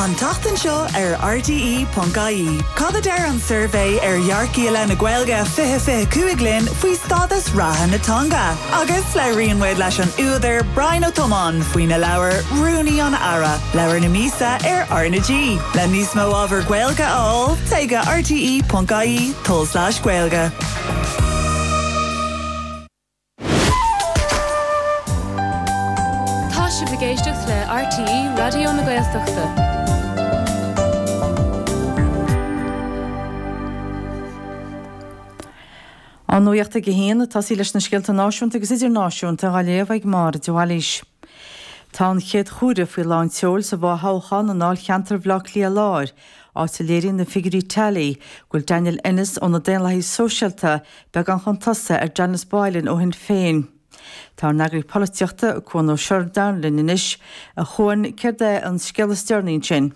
An tseachtain seo ar RTÉ.ie, cad a deir an suirbhé ar Dhearcaí i leith na Gaeilge 20, 25 linn faoi stádas reatha na teanga? Agus labhraíonn muid leis an údar Brian Ó Tiomáin faoina leabhar Rúnaí an Aire, Leabhar na Míosa ar RnaG. Le níos mó ábhar Gaeilge a fháil, téigh go rte.ie/gaeilge. Tá sibh ag éisteacht le RTÉ Raidió na Gaeltachta. An nuacht ag a haon, ag tosaí leis na scéalta náisiúnta agus idirnáisiúnta á léamh ag Máire de Bhailís. Tá an chéad chomhaireamh faoi lán tseoil sa bhfo-thoghchán i ndáilcheantar Bhaile Átha Cliath Láir, áit a léiríonn na figiúirí tally go bhfuil Daniel Ennis ó na Daonlathaithe Sóisialta, beagán chun tosaigh, ar Janice Boylan ó Shinn Féin. Tá ár n-eagraí polaitíochta, Cuan Ó Seireadáin, linn anois. A Chuan, céard é an scéal is deireanaí ansin?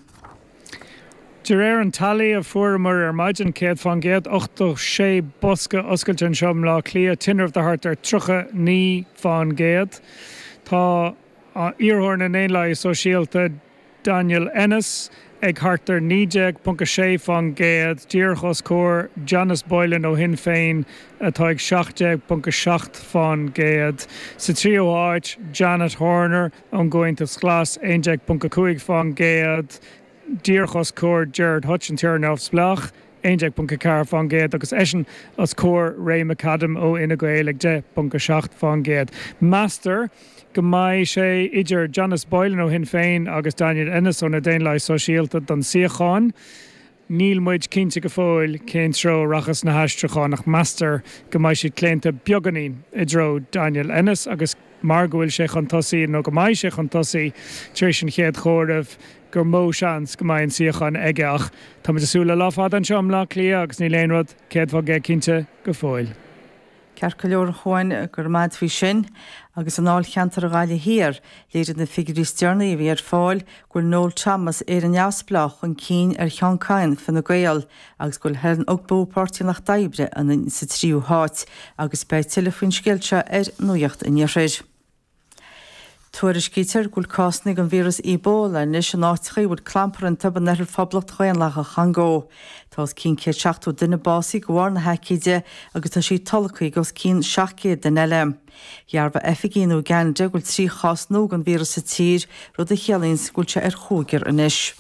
De réir an tally a fuaireamar ar maidin, 100%86 bosca oscailte anseo i mBleá Cliath, tinreamh de thart ar 39%. Tá iarrthóir na nDaonlathaithe Sóisialta, Daniel Ennis, ag thart ar 19.6 faoin gcéad, díreach os comhair Janice Boylan ó Shinn Féin atá ag 17.7 faoin gcéad. Sa tríú háit, Janet Horner ón gComhaontas Glas, 11.5 faoin gcéad, díreach os comhair Gerard Hutch, an t-iarrthóir neamhspleách. 11.4%, agus eisean os comhair Ray McAdam ó Fhine Gael ag 10.7%. Meastar go mbeidh sé idir Janice Boylan ó Shinn Féin agus Daniel Ennis ó na Daonlathaithe Sóisialta don suíochán. Níl muid cinnte go fóill cén treo a rachas na haistriúcháin ach meastar go mbeidh siad claonta beagáinín i dtreo Daniel Ennis agus mar go bhfuil sé chun tosaigh, nó go mbeidh sé chun tosaigh, tar éis an chéad chomhairimh, gur mó seans go mbeidh an suíochán aige ach tá muid ag súil le lá fada anseo i mBleá Cliath agus níl aon rud céad faoin gcéad cinnte go fóill. Ceart go leor a Chuain, go raibh maith agat faoi sin. Agus i ndáilcheantar na Gaillimhe Thiar, léirigh na figiúirí is deireanaí a bhí ar fáil go bhfuil Noel Thomas, Éire Neamhspleách, chun cinn ar Sheán Kyne, Fine Gael, agus go bhfuil Helen Ogbu, Páirtí an Lucht Oibre, sa tríú háit, agus beidh tuilleadh faoin scéal seo ar Nuacht an Iarthair. Tuairiscítear go bhfuil cásanna den víreas Ebola anois in áiteacha a bhfuil clampar iontu in oirthear Phoblacht Dhaonlathach an Chongó. Tá os cionn 170 duine básaithe de bharr na haicíde agus tá sí tolgtha ag os cionn 700 duine eile. Dhearbhaigh oifigigh in Uganda go bhfuil trí chás nua den víreas sa tír, rud a chiallaíonns go bhfuil sé ar chúigear anois.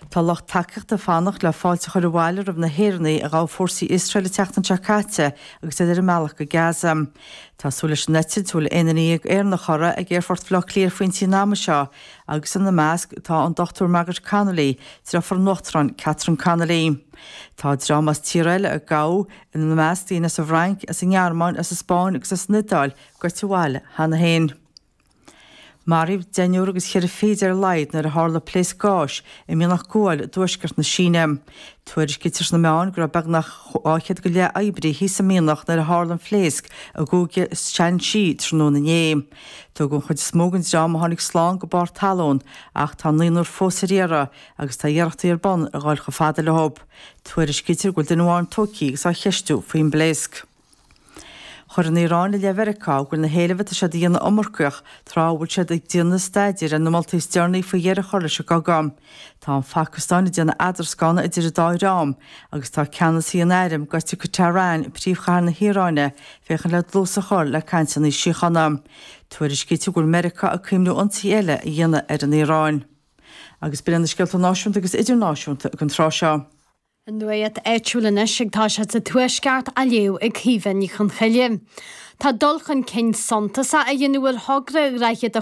Tá lucht tacaíochta ag fanacht le fáilte a chur abhaile roimh na hÉireannaigh a ghabh fórsaí Iosrael an tseachtain seo caite agus iad ar a mbealach go Gaza. Tá súil leis an eitilt, a bhfuil aon duine dhéag Éireannach uirthi, ag Aerfort Bhaile Átha Cliath faoin bpointe an ama seo agus ina measc tá an Dr Margaret Connolly, deirfiúr an Uachtaráin Catherine Connolly. Tá dream as tíortha eile a gabhadh, ina measc daoine as an bhFrainc, as an nGearmáin, as an Spáinn agus as an Iodáil, gaibhte abhaile cheana féin. Maraíodh deichniúr agus cheithre fichid ar a laghad nuair a tharla pléasc gáis i mianach guail i dtuaisceart na Síne. Tuairiscítear sna meáin go raibh beagnach dhá chéad go leith oibrí thíos sa mhianach nuair a tharla an phléasc i gCúige Shaanxi tráthnóna inné. Tugadh an chuid is mó den dream a tháinig slán go barr talún ach tá naonúr fós ar iarraidh agus tá iarrachtaí ar bun a dhul chomh fada leo. Tuairiscítear go bhfuil duine amháin tógtha agus á cheistiú faoin bpléasc. Chuir an Iaráin i leith Mheiriceá go bhfuil na héilimh atá siad a dhéanamh iomarcach, tráth a bhfuil siad ag déanamh staidéir ar na moltaí is deireanaí faoi dheireadh a chur leis an gcogadh. Tá an Phacastáin ag déanamh eadroscána idir an dá dhream, agus tá ceannasaí an airm gaibhte go Tehran, príomhchathair na hIaráine, féachaint le dlús a chur le cainteanna síochána. Tuairiscítear go bhfuil Meiriceá ag cuimniú ionsaithe eile a dhéanamh ar an Iaráin. Agus b'in iad na scéalta náisiúnta agus idirnáisiúnta ag an tráth seo. An nuacht áitiúil anois ag tosú sa Tuaisceart á léamh ag Caoimhe Ní Chonchoille. Tá dul chun cinn suntasach á dhéanamh ar thogra Dhroichead a